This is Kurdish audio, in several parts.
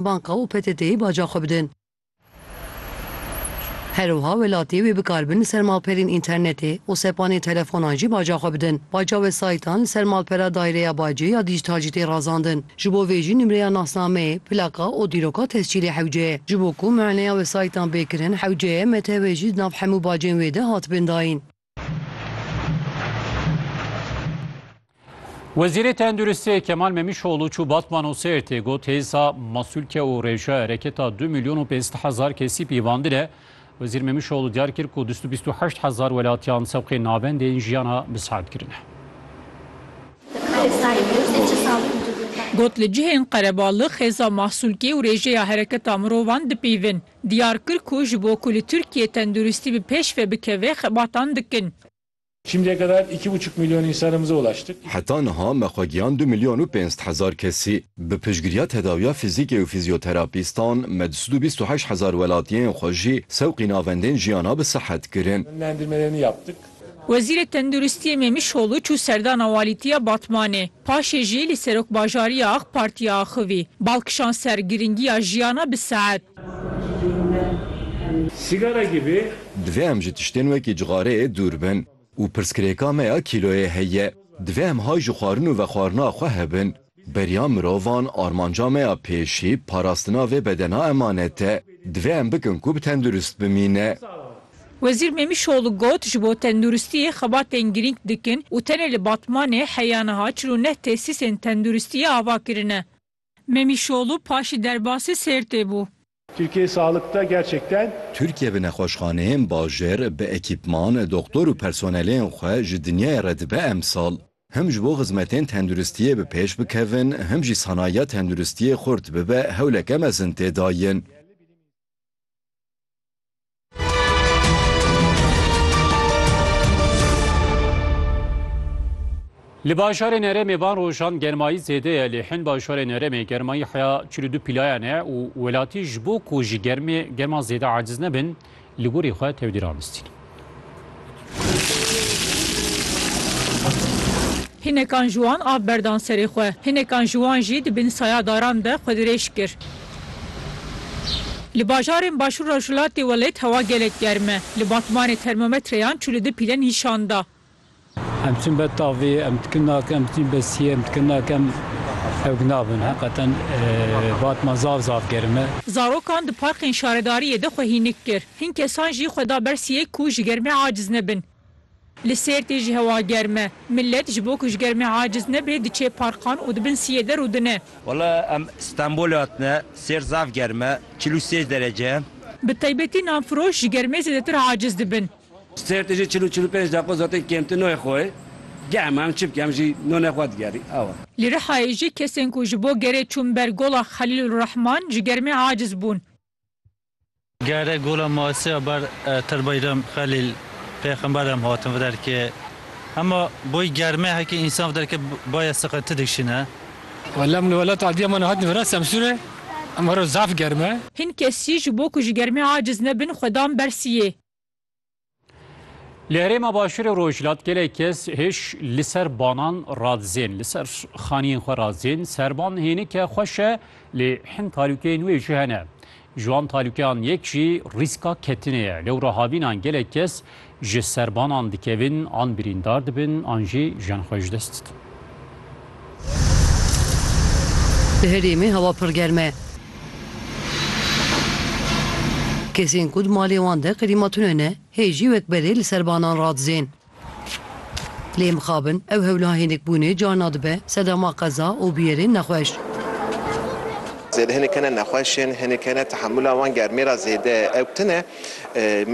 Banka û PTT'yê baca xwe bidin. Her wiha welatî wê bikaribin li ser malperên înternetê û sepanên telefonan jî baca xwe bidin. Baca wesayîtan li ser malpera Daireya Bacê ya Dîjîtal jî tê razandin. Ji bo vê jî nimreya nasnameyê, plaka û dîroka tescîlê hewce ye. Ji bo ku muayeneya wesayîtan bê kirin, hewce ye, MTW jî di nav hemû bacên wê de hatibin dayîn. Wezîrê Tenduristiyê Kemal Memîşoğlu çû Batman û Sêrtê got hêza masûlke û rêje ereketa du milyon û pênc hezar kesî pîvandine. Wezîr Memîşoğlu diyar kir ku du sed û bîst û heşt hezar welatiyan sewqê navendê yên jiyana bi saet kirine. Got li cihên qerebalix hêza masûlkê û rêjeya hereketa mirovan dipîvin. Diyar kir ku ji bo ku li Tirkiyê tenduristî bi pêş ve bikeve xebatan dikin. Şimdiye kadar iki buçuk milyon insanımıza ulaştık. Heta niha me xwe giyan du milyon û pênc sed hezar kesî. Bi piştgiriya tedawiya fizîkê û fizyoterapîstan me du sed û bîst û heşt hezar welatiyên xwe jî sewqî navendên jiyana bi sihet kirin. Yönlendirmelerini yaptık. Wezîrê Tenduristiyê Mêmişoğlu çû serdana walîtiya Batmanê. Paşê jî li Serokbajariya Ak Partiyê axivî. Bal kişand ser girîngiya jiyana bi saet. Divê em ji tiştên wekî cixareyê dûr bin û pirsgirêka me ya kîloyê heye. Divê em hay ji xwarin û vexwarina xwe hebin. Beriya mirovan armanca me ya pêşî parastina vê bedena emanet e. Divê em bikin ku tendurist bimîne. Wezîr Mêmîşoglû got, Ji bo tenduristiyê xebatên girîng dikin û tenê li Batmanê heya niha çil û neh tesîsên tenduristiyê ava kirine. Mêmîşoglû paşî derbasî Sêrtê bû. Türkiye sağlıkta gerçekten. Tirkiye bi nexweşxaneyên bajêr, bi ekîpman, doxtor û personeleyên xwe ji dinyayê re dibe emsal. Him ji bo xizmetên tenduristiyê bi pêş bikevin, him jî sanayiya tenduristiyê xurt bibe hewleke mezin tê dayin. Li bajarên herêmê van rojan germayî zêde ye lê hin bajarên herêmê germayî heya çil û du pîlayan e û welatî ji bo ku ji germê germa zêde aciz nebin li gorî xwe tevdî ramistîn. Hinekan ji wan av berdan serê xwe. Hinekan ji wan jî di bin saya daran de xwe dirêj kir. Li bajarên Başûr Rojhilatê welêt hewa gelek germ e. Li Batmanê termometreyan çû li du pîle nîşan da. Em diçin ber tavê, em dikin nake, em diçin ber siyê, em dikin nake, em hewk nabin. Heqeten Batman zaf zaf germ e. Zarokan di parkên şaredariyê de xwe hînik kir. Hin kesan jî xwe da ber siyek ku ji germê aciz nebin. Li Sêrtê jî hewa germ e. Milet ji bo ku ji germê aciz nebe diçe parkan û di bin siyê de rû dine. Wala em Stenbolê hatine, Sêrt zaf germ e, çil û sêz derece ye. Bi taybetî nanfiroş ji germê zêdetir aciz dibin. Sêrtê jî çil û çil û pênc deqo zaten kêmtir noyê xwe ye. Germ e em çi bikin, em jî nonê xwe digerî awe. Li Rihayê jî kesên ku ji bo gerê çûn ber Gola Xelîlurrehman ji germê aciz bûn. Gere gola Masiya ber Tirbayram Xelîl pêxember em hatin vi derkê. Hema boy germê hekê însan vi derkê baye siqe ti dikşîne. Wela min welat Adiyaman hatin vera Semsûrê em hero zaf germ e. Hin kesî ji bo ku ji germê aciz nebin xwedan bersiyê. Li herêma başûrê rojhilat gelek kes hêj li ser banan radizên li ser xaniyên xwe radizên serban hênike xweş e lê hin talûkeyên wê jî hene. Ji wan talûkeyan yek jî rîska ketinê ye. Lewra havînan gelek kes ji serbanan dikevin an birîndar dibin an jî jiyan xwe ji dest didin. Di herêmê hewa pir germ e. Kesên ku di malê wan de klîma tune ne hê jî wek berê li ser banan radizên. Lê mixabin ew hewla hênikbûnê carna dibe sedema qeza û bûyerên nexweş. Zêde hênik hene nexweş ên, hênik hene tehemûla wan germê re zêde ew tune.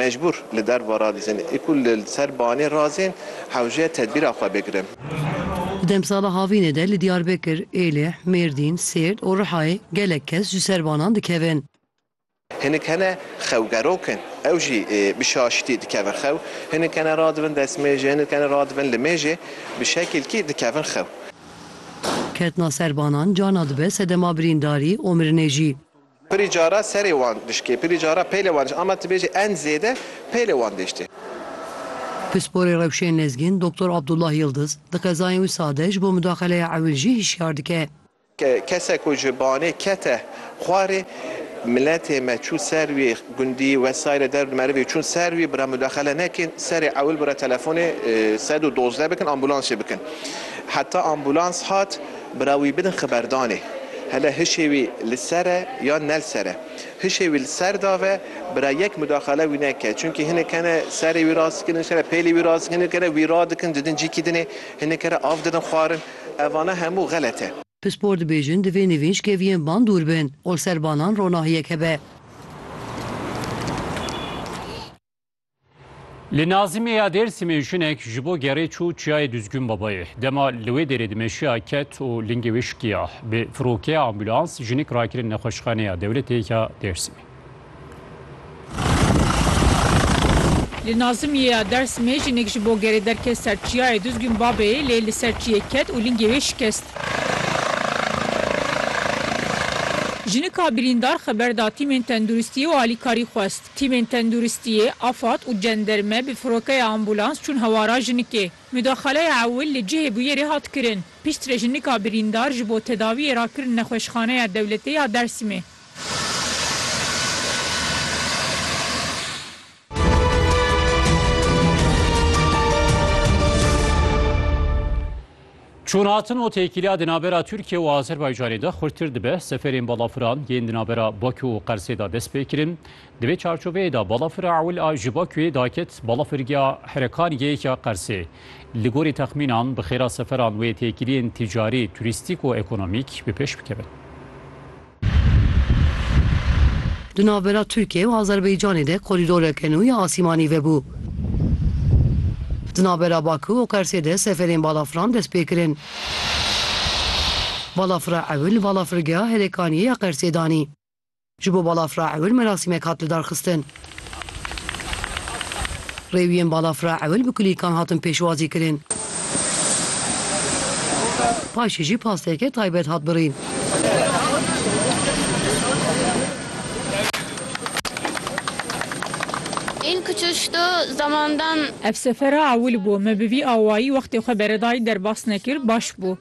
Mecbûr li derva radizin. Ê ku li ser banê razên hewce tedbîra xwe bigirin. Di demsala havînê de li Diyarbekir, Êlih, Mêrdîn, Sêrt û Rihayê gelek kes ji ser banan dikevin. Hinek hene xewgerok in, ew jî bi şaşîtî dikevin xew. Hinek hene radibin destmêjê, hinek hene radibin li mêjê bi şekilkî dikevin xew. Ketina ser banan carna dibe sedema birîndarî û mirinê jî. Pirî cara serê wan dişkê, pirî cara peylê wan dişkê ama tu bêjî en zêde peylê wan dêştê. Pisporê rewşên lezgên Doktor Abdullah Yildiz, di qezayên wî sade ji bo mudaxeleya ewil jî hişyar dike. Kesek ku ji banê kete xwarê, miletê me çû ser wî, gundî wesayîle der bi merivê çûn ser wî, bi re mudaxele nekin, serê ewil bi re telefonê sed û dozdeh bikin, ambûlansê bikin. Heta ambûlans hat, Bira wî bidin xiberdanê. Hele hişê wî li ser e yan ne li ser e. Hişê wî li ser da ve bira yek mudaxale wî neke. Çunkî hinek hene serê wî rast dikin, hinek hene pêlê wî rast dikin, hinek hene wî rad dikin didin cîkî dinê, hinek here av didin xwarin. Evana hemû xelet e. Pispor dibêjin divê nivînç keviyên van dûr bin. Ol ser banan ronahiyek hebe. Li Nazimê ya Dêrsimê jinek ji bo gerê çû çiyayê Duzgûn Babayê. Dema li wê dêrê dimeşiya ket û lingê wê şikiya. Bi firokeya ambulans jinik rakirin nexweşxaneya dewletê ya Dêrsimê. Li Nazimê ya Dêrsimê jinek ji bo gerê derket ser çiyayê Duzgûn Babeyê lê li ser çiyê ket û lingê wê şikest. Jinika birîndar xeber da tîmên tenduristiyê û alîkarî xwest. Tîmên tenduristiyê, afad û cenderme bi firokeya ambûlans çûn hewara jinikê. Mudaxaleya ewil li cihê bûyerê hat kirin. Piştre jinika birîndar ji bo tedawiyê rakirin Nexweşxaneya Dewletê ya Dêrsimê. Çûnhatin û têkiliya di navbera Tirkiye û Azerbaycanê de xurttir dibe, seferên balafiran yên di navbera Bakû û Qersê de dest pê kirin. Di vê çarçoveyê de balafira ewil a ji Bakûyê daket balafirgeha Herekaniyê ya Qersê. Li gorî texmînan bi xêra seferan wê têkiliyên tîcarî, turîstîk û ekonomîk bi pêş bikevin. Di navbera Tirkiye û Azerbaycanê de korîdoreke nû ya asîmanî vebû. Di navbera Bakû û Qersê de seferên balafiran dest pê kirin. Balafira ewil li balafirgeha Herekaniyê ya Qersê danî. Ji bo balafira ewil merasîmek hat lidarxistin. Rêwiyên balafira ewil bi kulîlkan hatin pêşwazî kirin. Paşê jî pasteke taybet hat birîn. Ev sefera ewil bû. Me bi vî awayî wextê xwe beredayî derbas nekir, baş bû.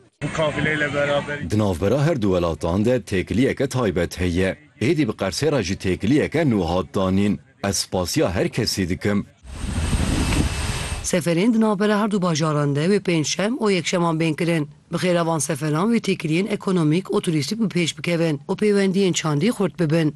Di navbera her du welatan de têkiliyeke taybet heye. Êdî bi Qersê re jî têkiliyeke nû hat danîn. Ez spasiya her kesî dikim. Seferên di navbera her du bajaran de wê pêncşem û yekşeman bên kirin. Bi xêra van seferan wê têkiliyên ekonomîk û turîstîk bi pêş bikevin û pêwendiyên çandî xurt bibin.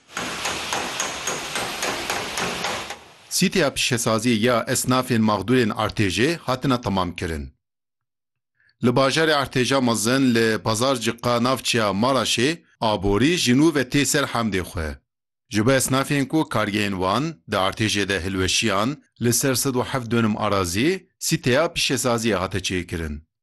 Sîteya pîşesaziyê ya esnafên maxdûrên Artêjê hatine temamkirin. Li bajarê Artêja Mezin li Pazarcika navçeya Maraşê aborî ji nû ve tê ser hemdê xwe. Ji bo esnafên ku kargehên wan di artêjê de hilweşiyan, li ser sed û heft dönüm arazî sîteya pîşesaziyê hate çêkirin.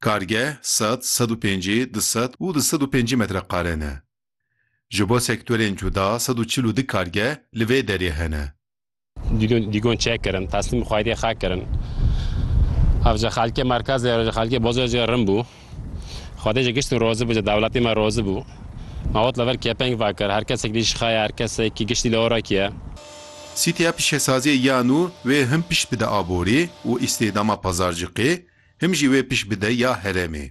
Kargeh sed, sed û pêncî, du sed û du sed û pêncî metreqare ne. Ji bo sektorên cuda sed û çil û du kargeh li vê derê hene. Dîgon çek kirin, teslîm xwediyê xwe kirin. Avca xelkê merkezê roja xelkê boz jê rin bû. Xwedê jê giştî rozi bû, jê dewletê me rozi bû. Me ot li vir kêpeng vekir, her kesekî li jî xeye, her kesekî giştî li orekî ye. Sîtîya pişesaziyê ya nû wê hin pişt bide aborî û îstîhdama pazarcikê, Him jî wê pişt bide ya herêmê.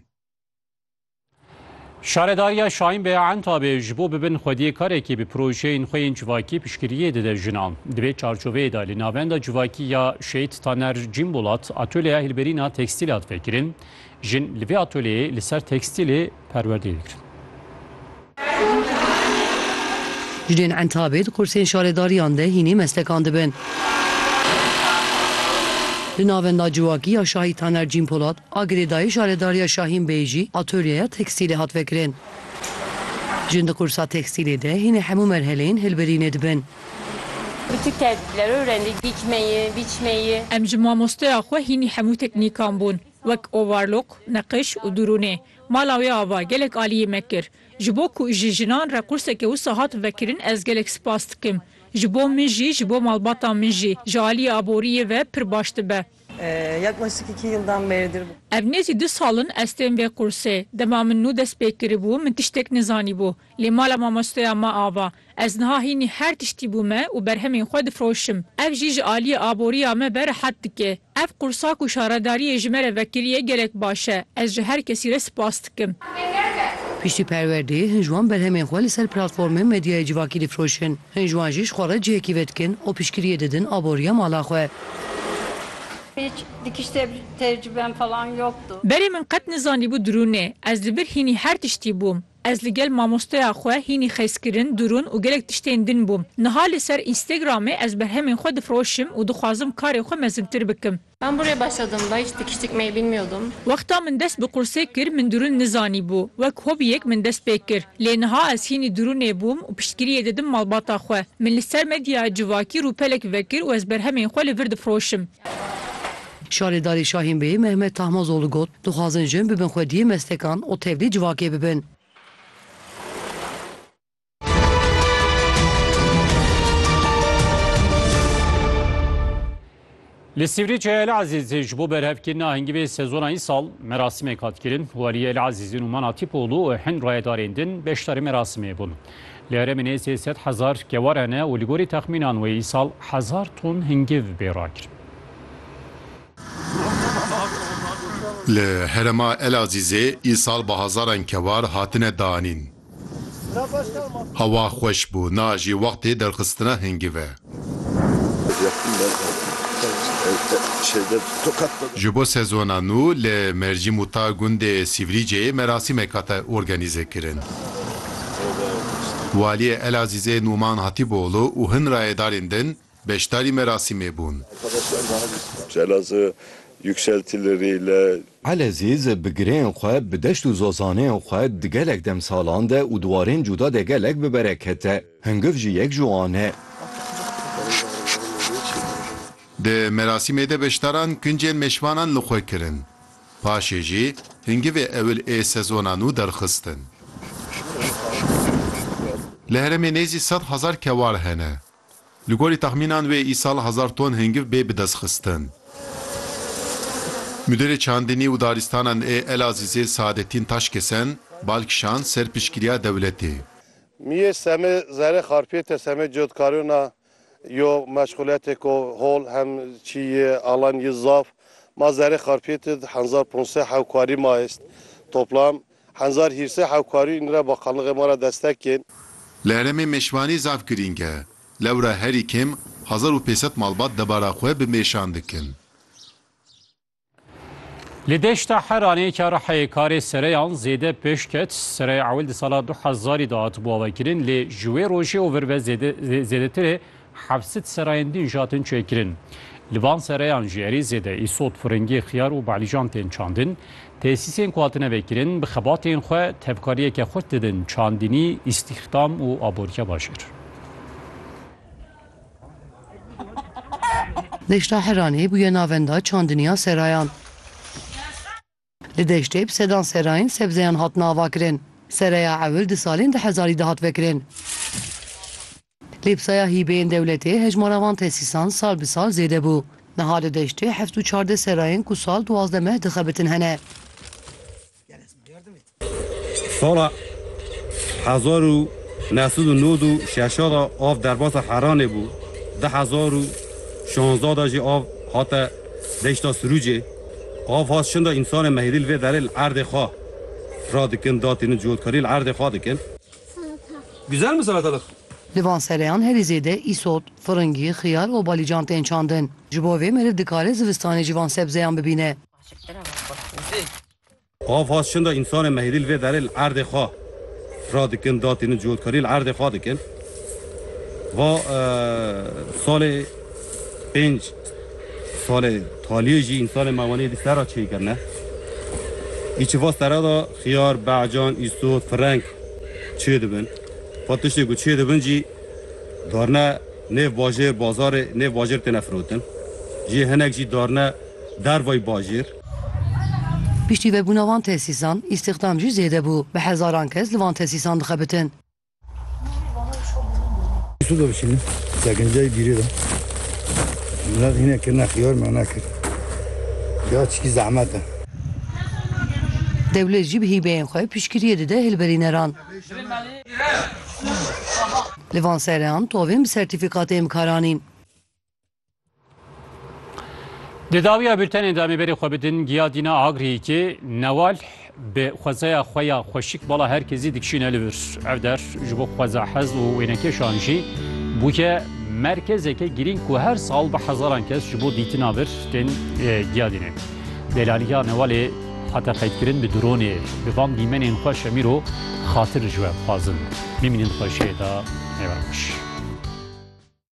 Şaredariya Şahinbê ya Entabê ji bo bibin xwediyêkarekî bi projeyên xwe yên civakî piştgiriyê dide jinan. Di vê çarçoveyê de li Navenda Civakî ya Şehîd Taner Cîmbolat atölyeya hilberîna tekstîl hat vekirin. Jin li vê atölyeyê li ser tekstîlê perwerdeyê dikirin. Jinên Entabê di kursên şaredariyan de hînî meslekan dibin. Li navenda civakî ya Şahî Taner Cînpolat a girêdayî şaredariya Şahîn Beyê jî atolyeya tekstîlê hat vekirin. Jin di kursa tekstîlê de hînî hemû merheleyên hilbirînê dibin. Bi tu kerdî dilo rengî dîkmeyî, bîçmeyî. Em ji mamosteya xwe hînî hemû teknîkan bûn. Wek ovarlok, neqiş û durûnê. Mala wê ava gelek aliyê me kir. Ji bo ku ji jinan re qurseke wisa hat vekirin ez gelek spas dikim. Ji bo min jî, ji bo malbata min jî ji aliyê aboriyê ve pir baş dibe. Yaklaşık iki yıldan beridir bu. Ev nêzî du sal in ez tên vê qursê. Dema min nû dest pê kiribû min tiştek nizanîbû. Lê mala mamosteya me ava. Ez niha hînî her tiştî bûme û berhemên xwe difiroşim. Ev jî ji aliyê aboriya me ve rehet dike. Ev qursa ku şaredariyê ji me re vekiriye gelek baş e. Ez ji her kesî re spas dikim. Piştî perwerdê, hin ji wan berhemên xwe li ser platformên medyaya civakî difiroşin. Hin ji wan jî ji xwe re cihekî vedikin û piştgiriyê didin aboriya mala xwe. Berê min qet nizanîbû dirûn e. Ez li vir hînî her tiştî bûm. Ez li gel mamosteya xwe hînî xezkirin, durûn û gelek tiştên din bûm. Niha li ser Instagramê ez berhemên xwe difiroşim û dixwazim karê xwe mezintir bikim. Ben buraya başladığımda hiç dikiş dikmeyi bilmiyordum. Wexta min dest bi qursê kir min durûn nizanîbû. Wek hobiyek min dest pê kir. Lê niha ez hînî durûnê bûm û piştgiriyê didim malbata xwe. Min li ser medyaya civakî rûpelek vekir û ez berhemên xwe li vir difiroşim. Şarêdarê Şahînbeyê Mehmet Tahmazoglû got, Dixwazin jin bibin xwediyê meslekan û tevlî civakê bibin. Li Sîvrî Çeya Elezîzê ji bo berhevkirina hingivê sezona îsal merasîmek hat kirin. Waliyê Elezîzê Nûman Atîpoglû û hin rayedarên din beşdarî merasimê bûn. Li herêmê nê sê sed hezar kewar hene û li gorî texmînan wê îsal hezar ton hingiv bê rakirin. Li herêma Elazîzê îsal bi hezaran kewar hatine danîn. Hewa xweş bû, niha jî wextê derxistina hingîv e. Ji bo sezona nû li Merjî Mûta gundê Sîvrîcê merasîmek hate organîzekirin. Waliyê Elazîzê Nûman Hatîboglû û hin rayedarên din, beşdarî merasîmê bûn. Celazê yükseltilerê ile. Elezîz bi gireyên xwe, bi deşt û zozaneyên xwe di gelek demsalan de û di warên cuda de gelek bi bereket e. Hingiv jî yek ji wan e. Di merasîmê de beşdaran kincên mêşvanan li xwe kirin. Paşê jî hingivê ewil ê sezona nû derxistin. Li herêmê nêzî sed hezar kewal hene. Li gorî texmînan wê îsal hezar ton hingiv bê bidestxistin. Mudirê Çandinî û Daristanan ê Elazîzê Saadettin Taşkesen bal kişand ser piştgiriya dewletê. Miyê semê zerê xarpiyete semê cotkariyona yo meşxuletêko hol hem çî yê alan yi zaf. Ma zerê xarpiyetid hezar ponsê hewkarî ma est. Toplam Henzar Hîrsê hewkarî û nira bakanlığê ma ra destek kên. Li herêmê mêşvanî zaf girîng e. Lewra herî kêm hezar û pênc sed malbat debara xwe bi mêşan dikin. Li deşta Heranê ka Rihayê karê sereyan zêde pêş ket. Sereyê ewil di sala du hezarî de hatibû avekirin lê ji wê rojê û vir ve zêdetir ê Heft sed serayên din jatin çêkirin. Li van serayan jî erê zêde îsot, firingî, xiyar û balîjan tên çandin. Tesîsên ku hatine vekirin bi xebatên xwe tevkariyeke xurt didin çandinî, îstîxdam û aboriya bajêr. Deşta Heranê bûye navenda çandiniya serayan. Di deştê bi sedan serayên sebzeyan hatine avakirin. Seraya ewil di salên du hezarî de hat vekirin. Lê bi saya hîbeyên dewletê hejmara van tesîsan sal bi sal zêde bû. Niha di deştê heft û çardeh serayên ku sal duwazdeh meh dixebitin hene. Sala hezar û neh sed û nod û şeş de av derbasa Heranê bû, du hezar û şazdeh de jî av hate deşta Sirûcê. Qafas şinda însanê mehîrî li vê derê li erdê xwe fira dikin, datînin, cotkarî li erdê xwe dikin. Güzel mi salatalık? Di van sereyan herî zêde îsot, firingî, xiyar û balîcan tên çandin. Ji bo vê meriv dikare zivistanê jî van sebzeyan bibîne. Ava şinda însanê me hêdî li vê derê li erdê xwe fira dikin, datînin, cihotkarî li erdê xwe dikin. Va salê pênc salê taliyê jî însanê me wenê hêdî serra çêy kirine. Îçi va serra da xiyar, be'can, îsot, fireng çê dibin. Va tiştê ku çê dibin jî darine nêv bajêr, bazarê nêv bajêr têne firotin. Jê hinek jî darine dervayî bajêr. Piştî vebûna van tesîsan, îstîxdam jî zêde bû. Bi hezaran kes li van tesîsan dixebitin. Dewlet jî bi hîbeyên xwe piştgiriyê dide hilberîneran. Li van sereyan tovên bi sertîfîkatê em karanîn. Di dawiya bültenê de em ê berê xwe bidin giya Dîna Agriyîkê newal bi xwezeya xwe ya xweşik bala her kezî dikişîne li vir. Ev der ji bo xweza hez û wênekeşan jî bûye merkezeke girîng ku her sal bi hezaran kes ji bo dîtina vir tên giya dînin. Delaliya newalê hate qeydkirin bi dronê bi van dîmenên xwe şemîr û xatir ji we dixwazin. Bimînin xweşiyê de nêwerin xweş.